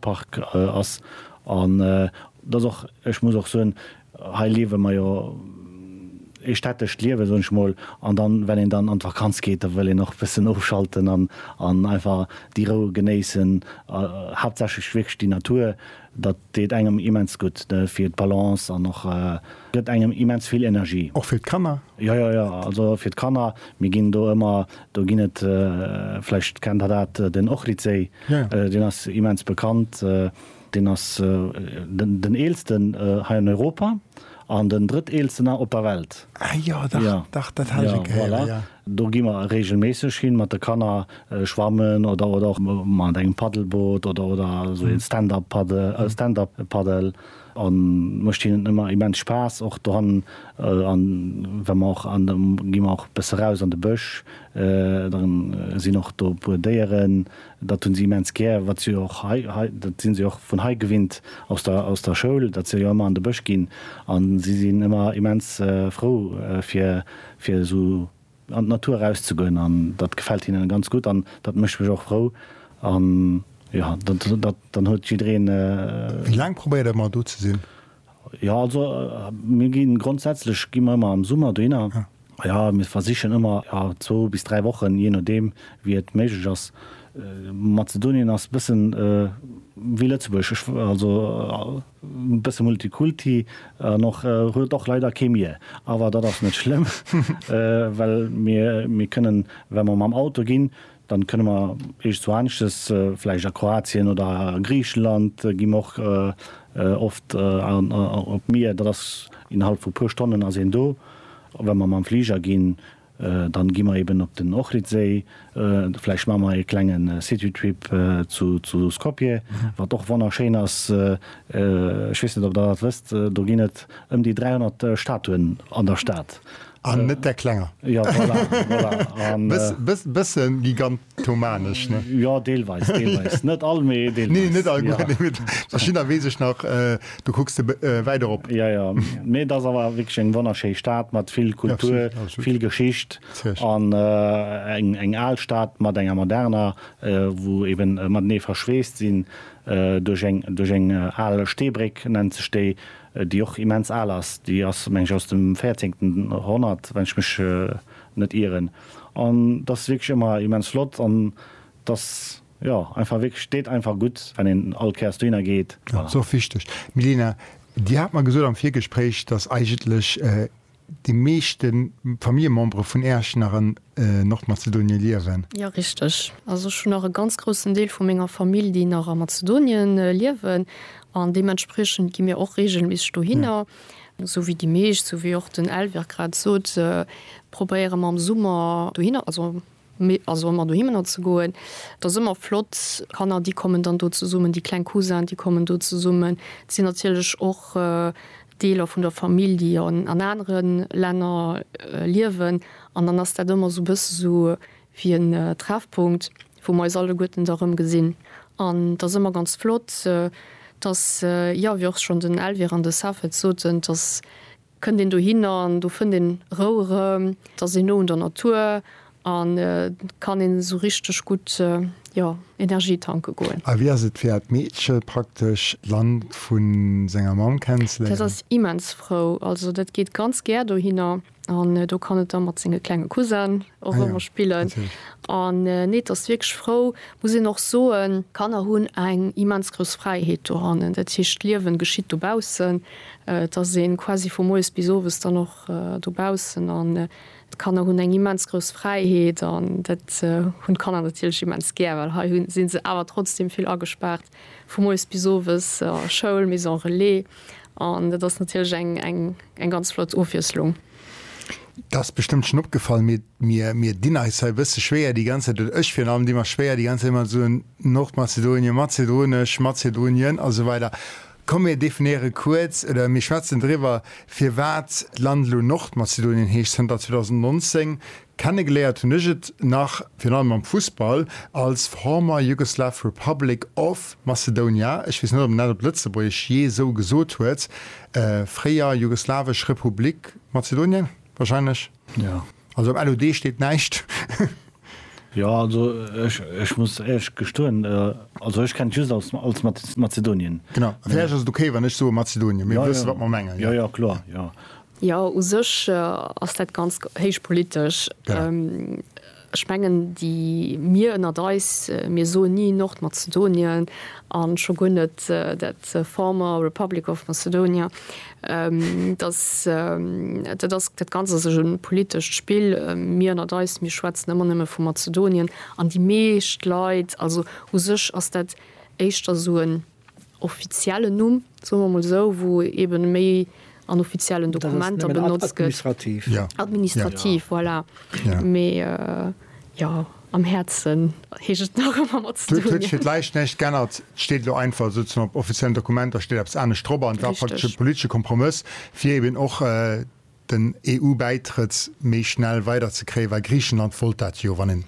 Park ass an dass och, ech muss och soen, hei liewe mer jo ee städtescht Liewen, soen ech mol, an dann, well een dann an d'Vakanz geet, da wëll een och e bëssen ofschalten an einfach déi Rou genéissen, haaptsächlech wierklech déi Natur, dat deet engem immens gutt fir d'Balance an och gëtt engem immens vill Energie. Och fir d'Kanner? Jo, jo, jo, also fir d'Kanner, mir ginn do ëmmer Do ginn et, vläicht kennt Der dat, den Ohridséi, deen ass immens bekannt. Deen ass den eelsten hei an Europa an den drëtteelsten op der Welt. Ah jo, dach, dach, dat hat ech e Kéier héieren, jo. Do gi mer reegelméisseg hin mat de Kanner schwammen oder och mat engem Paddelboot oder esou engem Stand-up-Paddle. An mecht hinnen emmer immens Spaass och dohannen. An wa mer och, an da gi mer och bësse raus an de Bësch, da sinn och do e puer Déieren, dat hunn si immens gär, wat si och hei, hei, dat sinn si och vun hei gewinnt aus der, aus der Schoul, dat se jo emmer an de Bësch ginn. An si sinn emmer immens frou fir, fir esou. an d'Natur erauszegoen an dat gefält hinnen ganz gutt an dat mécht mech och frou an jo dat dann huet jiddereen. Wéi laang probéiert der ëmmer do ze sinn? Jo also mir ginn grondsätzlech gi mer ëmmer am Summer dohinner, jo mir versichen ëmmer jo zwou bis dräi Wochen jee nodeem wéi et méiglech ass. Mazedonien ass bëssen wéi Lëtzebuerg, also. Bësse Multikulti an och huet och leider kee Mier. Awer dat ass net schlëmm, well mir mir kënnen, wa mer mam Auto ginn, dann kënne mer eescht zu aneschtes, vläicht a Kroatien oder a Griichenland gi mer och oft an op d'Mier. Dat ass innerhalb vu puer Stonnen ass een do. Wa mer mam Fliger ginn, Dann gi mer eben op den Ohridséi, vläicht maa mer ee klengen City Trip zu Skopje, wat och wonnerschéin ass. Ech weess net op der dat wësst, do ginn et ëm déi 300 Statuen an der Stad. An net där klenger. Jo voilà, voilà. An. Bëssen gigant. Thomanesch, ne? Jo, deelweis, deelweis. Net all, mee deelweis. Nee, net all, guer net. Gutt, verschiddener weess ech nach, do kucks de wäit erop. Jo, jo. Mee et ass awer wierklech eng wonnerschéi Stad mat vill Kultur, vill Geschicht an eng al Stad mat enger moderner, wou eben matenee verschweest sinn duerch eng al Steebréck, nennt sech déi, déi och immens al ass. Déi ass, meng ech, aus dem véierzéngten Honnert, wann ech mech net ieren. An dat ass wierklech ëmmer immens flott an et ass, jo, einfach wierklech, deet einfach gutt, wann een all Kéiers dohinner geet. Jo, dat ass och wichteg. Milena, Dir hat mer gesot am Virgespréich, dass eigentlech déi meeschte Familljemembere vun Äerch nach an Nordmazedonien liewen. Jo, richteg. Also ech hunn nach e ganz groussen Deel vu menger Famill, déi nach a Mazedonien liewen an deementspriechend gi mir och reegelméisseg dohinner. Esou wéi déi meescht, esou wéi och den Elvire grad sot, probéiere mer am Summer dohinner, also mir, also ëmmer dohinner ze goen. Et ass ëmmer flott. D'Kanner, déi kommen dann do zesummen, déi kleng Cousin, déi kommen do zesummen. Et sinn natierlech och Deeler vun der Famill, déi an anere Länner liewen. An dann ass dat ëmmer esou e bësse sou wéi en Treffpunkt. wou mer eis alleguerten da rëm gesinn. An et ass ëmmer ganz flott, dass, jo, wéi och schonn den Elvire an de Safed et soten, dass kënnt een dohinner an do fënnt een Rou erëm, et ass een no un der Natur an et kann een esou richteg gutt, jo, Energie tanke goen. A wéi ass et fir dat Meedche praktesch d'Land vu senger Mamm kennenzeléieren? Dat ass immens frou. Also dat geet ganz gär dohinner. An do kann et da mat senge klenge Cousinen och ëmmer spillen. An nee, et ass wierklech frou, muss een och soen. D'Kanner hunn eng immens grouss Fräiheet dohannen. Dat heescht, d'Liewen geschitt dobaussen. Et ass ee quasi vu moies bis owes dann och dobaussen. An d'Kanner hunn eng immens grouss Fräiheet. An dat hunn d'Kanner natierlech immens gär, well hei si se awer trotzdem vill agespaart. Vu moies bis owes a Schoul, Maison Relais, an dat ass natierlech eng, eng, eng ganz flott Ofwiesslung. Dat ass bestëmmt schonn opgefall, mee mir, mir dinn eis hei e bësse schwéier déi ganz Zäit, oder ech virun allem di mer schwéier déi ganz Zäit mat soen, Nordmazedonien, Mazedonesch, Mazedonien a sou weider. Komm mir definéiere kuerz, oder mir schwätzen driwwer, firwat d'Land elo Nordmazedonien heescht zënter 2019, Kennegele'ert hun ech et nach, virun allem am Fussball, als Former Yugoslav Republic of Macedonia, ech wéss net op en dat op Letzebuergesch je sou gesot huet, fréier Jugoslawesch Republik Mazedonien, wahrscheinlech? Jo. Also am LOD steet neischt. Jo, also ech muss éirech gestoen, also ech kennt just als Mazedonien. Genau, a villäicht ass et ok wann ech soe Mazedonien, mee mir wësse wat mer mengen. Jo, jo, kloer, jo. Jo, u sech ass dat ganz héich politesch. Ech mengen, déi mir ënnert eis, mir soen ni Nordmazedonien an scho guer net dat former Republic of Macedonia. Dass dat ass, dat Ganzt ass e politescht Spill. Mir ënnert eis, mir schwätzen ëmmer nëmme vu Mazedonien an déi meescht Leit, also u sech ass dat éischter esou en. offiziellen Numm, soe mer mol esou, wou eebe méi an offiziellen Dokumenter benotzt gëtt. Administrativ, voilà. Mee jo, am Häerzen heescht et nach ëmmer mat ze dinn. Huet sech fir d'Läischt näischt geännert. Et steet elo einfach esou, op offiziellen Dokumenter steet eppes anescht drop an et war praktesch e politesche Kompromëss, fir eeben och den EU-Bäitrëtt méi schnell weiderzekréien, well Griichenland wollt dat jo, wann een,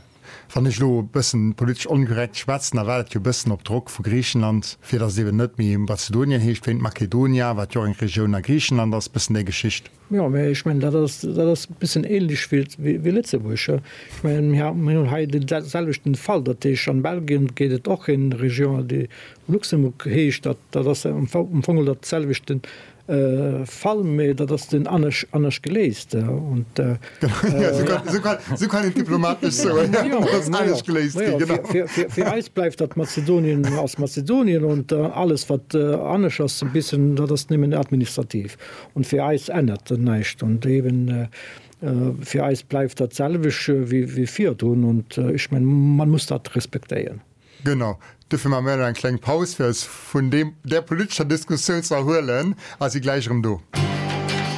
wann ech elo e bëssen politesch onkorrekt schwätzen, da war dat jo e bëssen op Drock vu Griichenland, fir datt et eben net méi Mazedonien heescht, wéint Makedonia, wat jo och eng Regioun a Griichenland ass, e bëssen déi Geschicht. Jo, mä ech mengen, dat ass, dat ass e bëssen ähnlech wéi, wéi Lëtzebuerg. Ech mengen, mir ha, mir hunn hei dee selwechten Fall, dat heescht, am Belgien gétt et och eng Région, déi Luxembourg heescht, dat, dat ass am Fong, am Fong dat selwechten, Fall, mee dat ass dunn anescht geléist. Fir eis bleift dat Mazedonien ass Mazedonien an alles wat anescht ass e bissen, dat ass nëmmen administrativ an fir eis ännert dat näischt. Fir eis bleift dat selwecht wéi virdrun an ech mengen, mer muss dat respektéieren. Genau. Dofir maache mir elo eng kleng Paus, fir eis vun deem, där politescher Diskussioun ze erhuelen, a si gläich erëm do.